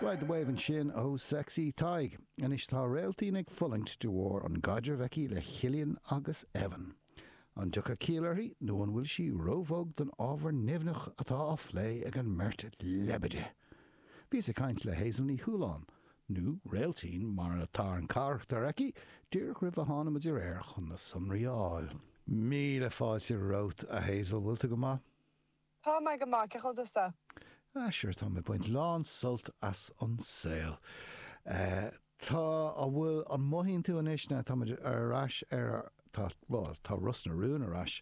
Ride the Wave ansin ó Sexy Tadhg. Anois tá Réaltín ag fulaingt de bharr an gcaidreamh aici le Chillian agus Evan. An dtiocfaidh ciall uirthi nó an bhfuil sí róbhog don ábhar nimhneach atá á phlé ag an mbeirt leibide? Bhíos ag caint le Hazel Ní Chualáin, nó Réaltín mar atá an carachtar aici, díreach roimh a tháinig muid ar aer chun na sonraí a fháil. Míle fáilte romhat, a Hazel, bhfuil tú go maith? Tá mé go maith, cén chaoi a bhfuil tusa? Ah sure, táim ag baint lán sult as an saol. Tá, an bhfuil, an mothaíonn tú anois now táimid ar ais ar, tá, bhuel, tá Ros na Rún ar ais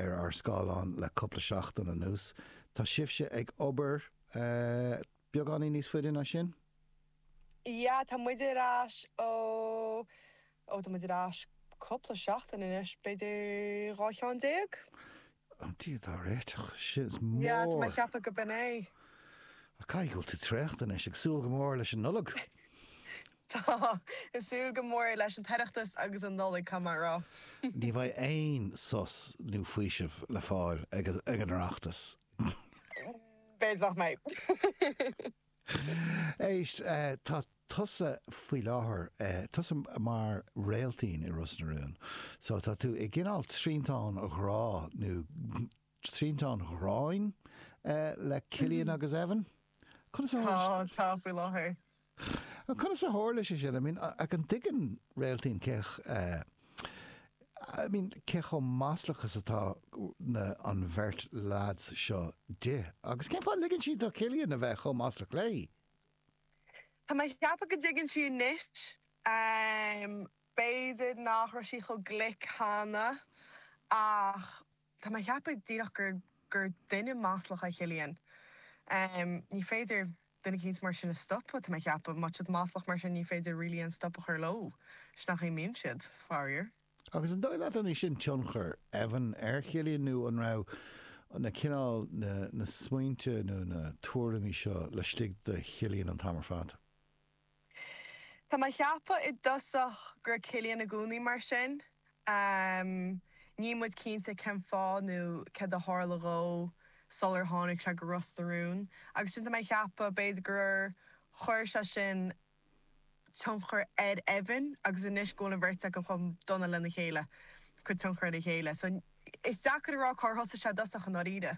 ar ár scáileáin le cúpla seachtain anuas, tá sibhse ag obair beagáinín níos faide ná sin? Yeah, tá muid ar ais ó, ó tá muid ar ais cúpla seachtain anois, b'fhéidir dhá cheann déag? Ó Dia dár réiteach, sin is mór! Mheáit mé a cheapadh go b'in é. Caithfidh go bhfuil tú traochta anois, ag súil go mór leis an Nollaig! Tá, ag súil go mór leis an Oireachtas agus an Nollaig, caithfidh mé a rá. Ní bheidh aon sos nó faoiseamh le fáil ag an Oireachtas. B'fhéidir nach mbeidh. Éist, tá tusa faoi láthair, tusa mar Réaltín i Ros na Rún. So, tá tú i gcineál triantán ghrá, nó triantán ghráin, le Cillian agus Evan. Conas a tharla sé? Tá, tá faoi láthair. Conas a tharla sé sin? I mean, an dtuigeann Réaltín cé I mean, cé chomh maslach is atá na, an bheirt leads seo di? Agus cén fáth a ligeann sí do Chillian a bheith chomh maslach léi? Tá mé ag ceapadh go dtuigeann sí anois. B'fhéidir nach raibh sí chomh glic cheana ach. Tá mé a cheapadh díreach gur gur duine maslach é Cillian. Ní féidir duine eicínt mar sin a stopadh, tá mé a cheapadh. Má tá siad maslach mar sin, ní féidir really aon stop a chur leo. Sin an chaoi a mbíonn siad, faraor. Agus an dóigh leat an é sin tionchar Evan ar Chillian nó an raibh na cineál na na smaointe nó na tuairimí seo laistigh de Chillian an t-am ar fad? Tá mé a cheapadh i dtosach go raibh Cillian i gcónaí mar sin. Níl muid cinnte cén fáth nó céard a tharla dhó sular tháinig sé go Ros na Rún. Agus ansin tá mé a cheapadh, b'fhéidir gur chuir sé sin tionchar ar Evan agus anois go bhfuil an bheirt acu chomh dona lena chéile, ag cur tionchar ar a chéile. So, is deacair a rá cár thosaigh sé i dtosach i ndáiríre.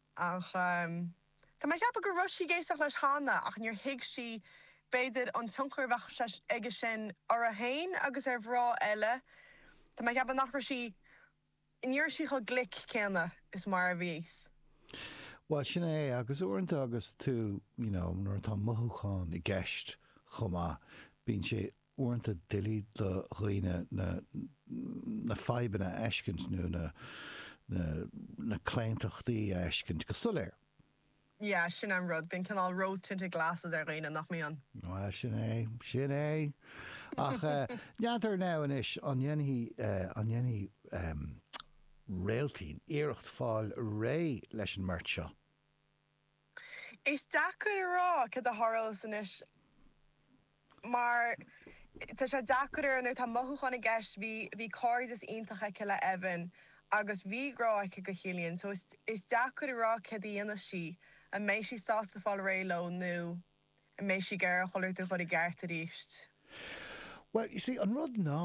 Ach tá mé ag ceapadh go raibh sí ag éisteacht leis cheana ach níor thuig sí, b'fhéidir, an tionchar a bheadh aige sin orthu féin agus ar mhná eile. Tá mé ag ceapadh nach raibh sí, ní raibh sí chomh glic céanna is mar a bhí siad. Bhuel, sin é. Agus uaireanta agus tú, you know, nuair atá mothúcháin i gceist chomh maith, bíonn sé uaireanta doiligh do dhaoine na fadhbanna a fheiscint nó na claontachtaí a fheiscint go soiléir. Yeah, sin é an rud, bíonn cineál rose tinted glasses ar dhaoine, nach mbíonn? Bhuel, sin é, sin é. Ach n'fheadar now anois, an ndéanfaidh Réiltín iarracht fáil réidh leis an mbeirt seo? Is deacair a rá cad a tharlós anois mar tá sé deacair ar nuair atá mothúcháin i gceist. Bhí bhí cairdeas iontach aici le hÉimhín agus bhí grá aici do Chillian so is is deacair a rá cad a dhéanfas sí, an mbeidh sí sásta fáil réidh leo nó. an mbeidh sí ag iarraidh chuile rud a chur i gceart aríst? Bhuel, you see, an rud ná,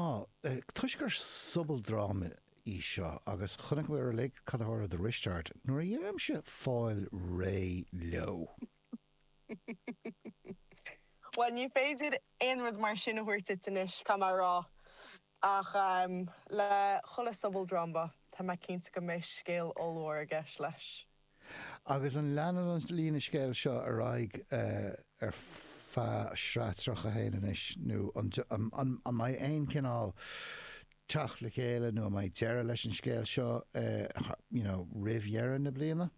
toisc gur sobaldráma í seo, agus chonaiceamar uilig cad a tharla do Risteárd nuair a deirimse fáil réidh leo. Bhuel, ní féidir aon rud mar sin a thabhairt duit anois, caithfidh mé a rá. Ach, em, le chuile sobaldráma, tá mé cinnte go mbeidh scéal ollmhór i gceist leis. Agus an leanann an líne scéil seo ar aghaidh ar feadh sraith 31 anois, nó an mbeidh aon chineál teacht le chéile nó an mbeidh deireadh leis an scéal seo you know roimh dheireadh na bliana?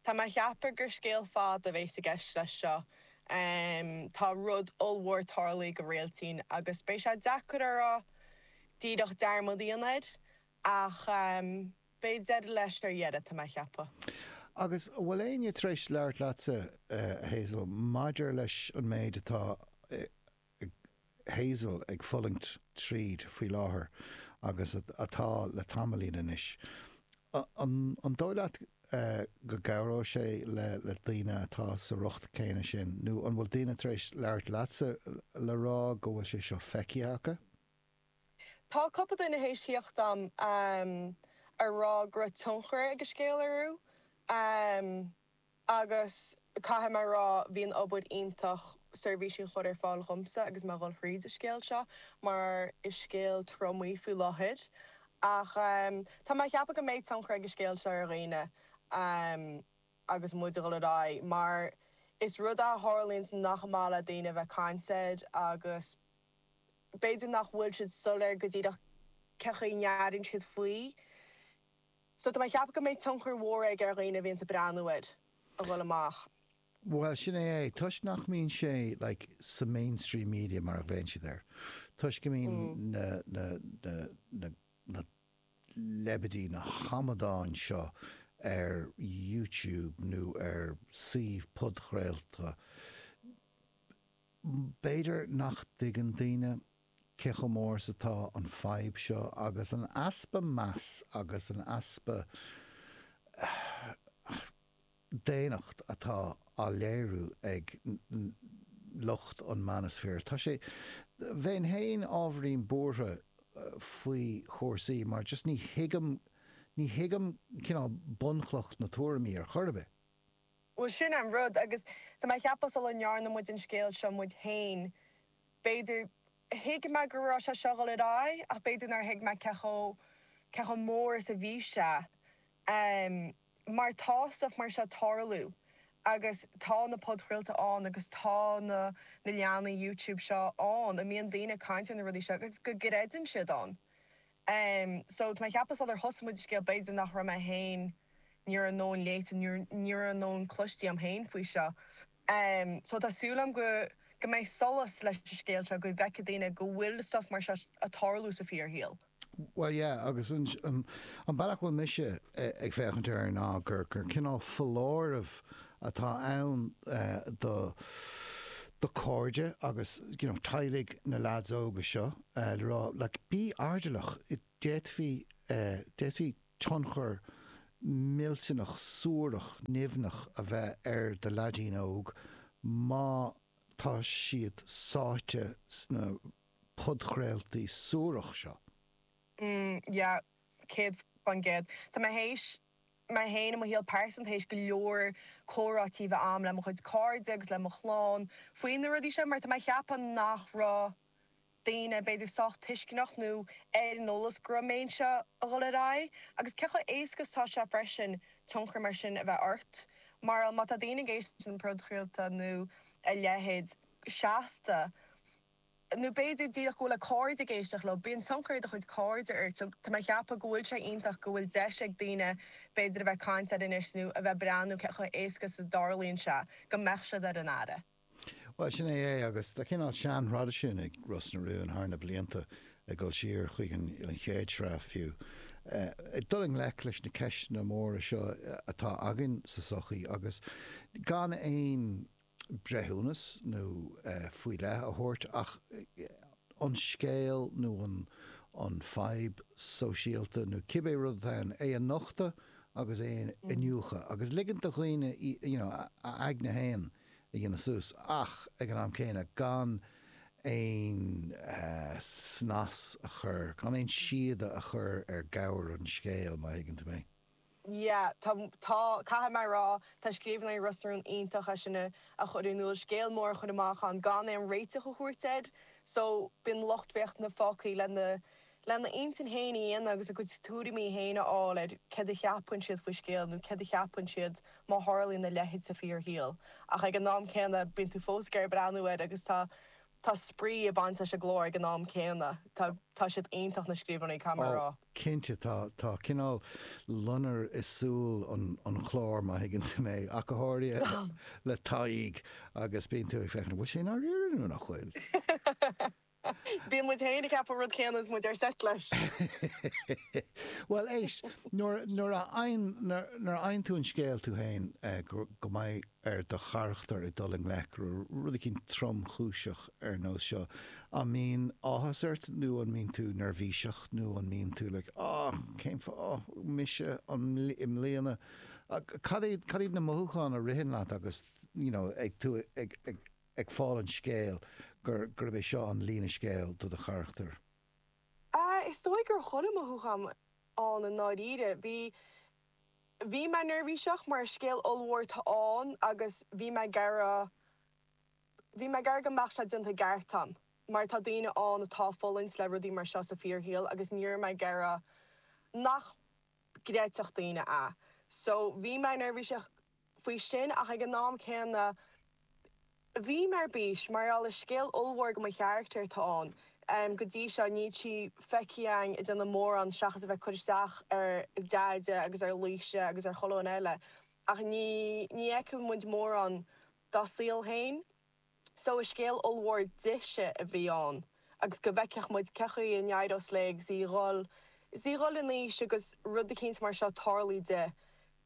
Tá mé a cheapadh gur scéal fada a bhéas i gceist leis seo. Tá rud ollmhór tarlaithe do Réiltín agus beidh sé deacair a rá díreach dearmad a dhéanamh air, ach Beidh deireadh leis ar deireadh, tá mé a cheapadh. Agus an bhfuil éinne tar éis labhairt leatsa, a Hazel, maidir leis an méid atá Hazel ag fulaingt tríd faoi láthair agus atá le tamaillín anois? An dóigh leat go gcabhróidh sé le daoine atá sa riocht céanna sin, nó an bhfuil daoine tar éis labhairt leatsa le rá go bhfuil sé seo feicthe acu? Tá cupla daoine théis thíocht agam a rá go raibh tionchar ag a scéal orthu agus caithfidh mé a rá bhí an obair iontach seirbhísí a chur ar fáil dhomsa agus mé a dhul thríd a scéal seo mar is scéal trom í faoi láthair ach tá mé a cheapadh go mbeidh tionchar ag a scéal seo ar dhaoine agus muid a dhul ar aghaidh mar is rud é a tharlaíonns nach maith le daoine a bheith caint air agus b'fhéidir nach bhfuil siad soiléir go díreach cén chaoi a n-airíonn siad faoi. So, tá mé ag ceapadh go mbeidh tionchar mhór aige ar dhaoine a bhíonns ag breathnú air a dhul amach. Bhuel, sin é é. Toisc nach mbíonn sé, like, sa mainstream media mar a ghlaonn siad air, toisc go mbíonn na, na, na, na, na leibidí, na hamadáin seo ar YouTube nó ar suímh podchraolta, B'fhéidir nach dtuigeann daoine cé chomh mór is atá an fhadhb seo, agus an easpa meas agus an easpa daonnacht atá á léiriú ag lucht an manosphere. Tá sé, bheinn féin ábhairín buartha faoi chúrsaí, mar just ní thuigim, ní thuigim cineál bunchloch na tuairimí ar chor ar bith. Bhuel, sin an rud. Agus tá mé a cheapadh sula ndearna muid an scéal seo muid féin, b'fhéidir, thuig mé go raibh sé seo ag dul ar aghaidh, ach b'fhéidir nár thuig mé cé chomh, cé chomh mór is a bhí sé. Em. mar tá stuff mar seo ag tarlú agus tá na podchraolta ann agus tá na, na leathanaigh YouTube seo ann go mbíonn daoine ag caint ar na rudaí seo agus go gcreideann siad ann. Em so tá mé a cheapadh sular thosaigh muid an scéal b'fhéidir nach raibh mé féin ní raibh an-iomarca léite ní raibh ní raibh mórán cloiste a'm féin faoi seo. Em so tá súil agam go go mbeidh solas leis an scéal seo go bhfeicfidh daoine go bhfuil stuff mar seo a tarlú sa fíor shaol. Bhuel yeah agus an an an bealach a bhfuil mise ag féachaint air ná gur gur cineál foláireamh atá ann eh do do cairde agus you know teaghlaigh na leaids óga seo, le rá, like, bí airdeallach, d'fhéadfaí, d'fhéadfaí tionchar millteanach suarach nimhneach a bheith ar do leaidín óg má tá siad sáite sna podchraoltaí suarach seo. mm yeah céad faoin gcéad. Tá mé théis, mé féin i mo shaol pearsanta, théis go leor comhráití a bheith a'm le mo chuid cairde agus le mo chlann faoi na rudaí seo mar tá mé a cheapadh nach raibh, daoine, b'fhéidir, sách tuisceanach nó ar an eolas go raibh a méid seo a dhul ar aghaidh, agus cé chomh éasca is tá sé freisin tionchar mar sin a bheith ort. Mar, like, má tá daoine ag éisteacht le podchraolta nó a leithéid go seasta, nó b'fhéidir díreach go bhfuil a gcairde ag éisteacht leo, bíonn tionchar ag do chuid cairde ort. So, tá mé ag ceapadh go bhfuil sé iontach go bhfuil deis ag daoine b'fhéidir a bheith ag caint air anois nó a bheith ag breathnú cé chomh éasca is a dtarlaíonn sé go mbeadh siad ar an aire. Bhuel, sin é é, agus tá cineál seantraidisiún ag Ros na Rún thar na blianta, ag dul siar chuig an chéad sraith fiú, ag dul i ngleic leis na ceisteanna móra seo atá againn sa sochaí agus gan aon breithiúnas nó faoi leith a thabhairt ach an scéal nó an fadhb sóisialta nó cibé rud atá ann, é a nochtadh agus é a iniúchadh agus ligint do dhaoine, you know, a aigne féin. a dhéanamh suas, ach ag an am céanna gan aon snas a chur, gan aon síoda a chur ar ghabhar an scéil, má thuigeann tú mé. Yeah, tá, tá, caithfidh mé a rá, tá scríbhneoirí Ros na Rún iontach ag é sin a chur in iúl, scéal mór a chur amach ach gan aon réiteach a thabhairt air. So, bíonn lucht féachana fágtha lena lena intinn féin a dhéanamh agus a gcuid tuairimí féin a fháil ar céard a cheapann siad faoin scéal nó céard a cheapann siad má tharlaíonn a leithéid sa fíorshaol. Ach ag an am céanna, bíonn tú fós ag breathnú air agus tá tá spraoi ag baint leis an gclár ag an am céanna. Tá tá siad iontach, na scríbhneoirí, caithfidh mé a rá. Cinnte, tá tá cineál loinnir i súil an an chláir, má thuigeann tú mé, ach go háirithe le Tadhg agus bíonn tú ag féachaint, an bhfuil sé i ndáiríre nó nach bhfuil? Bíonn muid féin ag ceapadh an rud céanna is muid ar seit leis. Bhuel, éist, nuair a fhaigheann tú an scéal tú féin go mbeidh ar do charachtar ag dul i ngleic le rud eicínt tromchúiseach ar nós seo, an mbíonn áthas ort nó an mbíonn tú neirbhíseach nó an mbíonn tú like oh, cén fáth, oh, mise, an, i mbliana? Cad iad na mothúcháin a ritheann leat agus, you know, ag tú ag. ag fáil an scéil gur gurb é seo an líne scéil do do charachtar? Ah, is dóigh go bhfuil chuile mhothúchán ann i ndáiríre. Bhí. bhí mé neirbhíseach mar is scéal ollmhór atá ann agus bhí mé ag iarraidh. bhí mé ag iarraidh go mbeadh sé déanta i gceart a'm mar tá daoine ann atá ag fulaingt le rudaí mar seo sa fíorshaol agus ní raibh mé ag iarraidh nach gcreidfeadh daoine é. So bhí mé neirbhíseach go. faoi sin ach ag an am céanna bhí mé ar bís mar gheall is scéal ollmhór do mo charachtar atá ann. Go dtí seo níl sí feicthe againn ag déanamh mórán seachas a bheith ag cur isteach ar Deaide agus ar Laoise agus ar chuile dhuine eile ach ní fheiceann muid mórán dá saol féin. So is scéal ollmhór dise a bhí ann agus go bhfeicfeadh muid cé chaoi a n-éireos léi agus í ag dul, is í ag dul in aois agus rud eicínt mar seo ag tarlú di,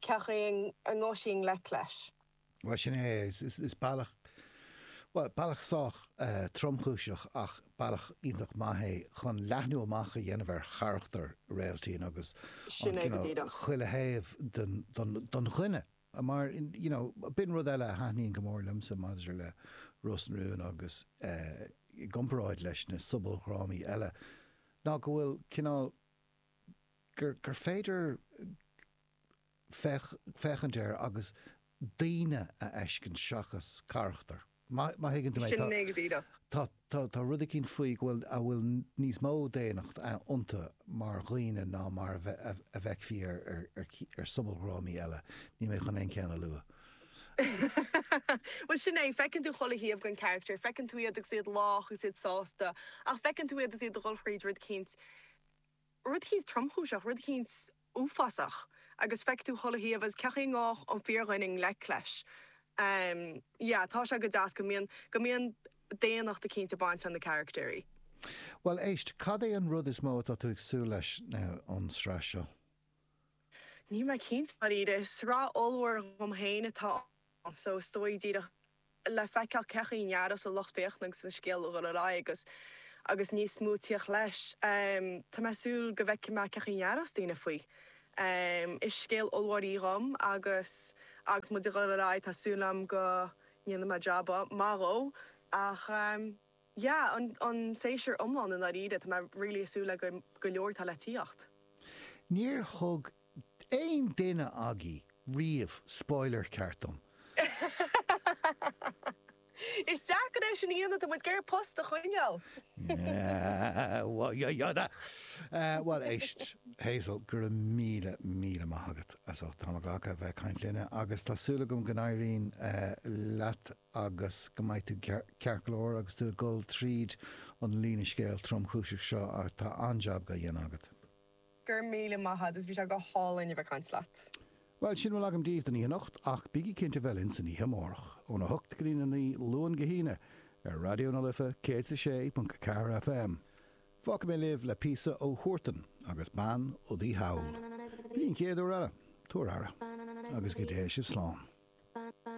cé chaoi a ngabhfaidh sí i ngleic leis. Bhuel, sin é, is bealach, bhuel, bealach sách tromchúiseach ach bealach iontach maith é chun leathnú amach a dhéanamh ar charachtar Réailtín agus, you know, chuile thaobh den dhuine. Mar, you know, b'in rud eile a thaitníonn go mór liomsa maidir le Ros na Rún agus i gcomparáid leis na sobaldhrámaí eile, ná go bhfuil cineál, gur, gur féidir féach, féachaint air agus daoine a fheiscint seachas carachtair. Má thuigeann tú mé, tá, tá, tá, tá rud eicínt faoi go bhfuil, a bhfuil níos mó daonnacht iontu mar dhaoine ná mar a bhfeicfí ar, ar, ar, ar shobaldhrámaí eile. Níl mé chun aon cheann a lua. Bhuel, sin é, feiceann tú chuile thaobh den character, feiceann tú iad agus iad lách agus iad sásta, ach feiceann tú iad is iad ag dhul thríd rud eicínt, rud eicínt tromchúiseach, rud eicínt uafásach, agus feicfidh tú chuile thaobh agus cén chaoi a ngabhfadh an fíordhuine i ngleic leis. Yeah, tá sé go deas go mbíonn, go mbíonn daonnacht eicínt ag baint le na carachtair. Bhuel, éist, cad é an rud is mó atá tú ag súil leis ón sraith seo? Níl mé cinnte, i ndáiríre. Sraith ollmhór dhom féin atá ann, so is dóigh díreach le feiceáil céard a cheapanns an lucht féachana agus an scéal ag dul ar aghaidh agus níos mó ag tíocht leis. Tá mé ag súil go bhfeicfidh mé céard a cheapanns daoine faoi. Is scéal ollmhór í dhom agus agus muid ag dul ar aghaidh tá súil agam go ndéanfaidh mé jab maith dhó ach. yeah an séasúr iomlán i ndáiríre tá mé really ag súil le go go leor atá le tíocht. Níor thug aon duine agaibh riamh spoiler ceart dom! Is deacair é sin a dhéanamh, tá muid ag iarraidh post a choinneáil! Bhuel éist, Hazel, go raibh míle míle maith agat as ucht t'am a ghlacadh a bheith ag caint linne agus tá súil agam go n-éiríonn leat. agus go mbeidh tú ceart go leor agus tú ag dul tríd an líne scéil tromchúiseach seo ach tá an-jab ga dhéanamh agat. Go raibh míle maith a'd is bhí sé go hálainn a bheith ag caint leat. Bhuel, sin a bhfuil agam daoibh don oíche anocht ach bígí cinnte bheith linn san oíche amárach, óna hocht go dtí a naoi, Luan go hAoine, ar Raidió na Life 106.4 FM. Fágfaidh mé libh le píosa ó Huartan agus Bean Udaí Thall. Go dtí an chéad uair eile, tabhair aire agus go dtéigh sibh slán.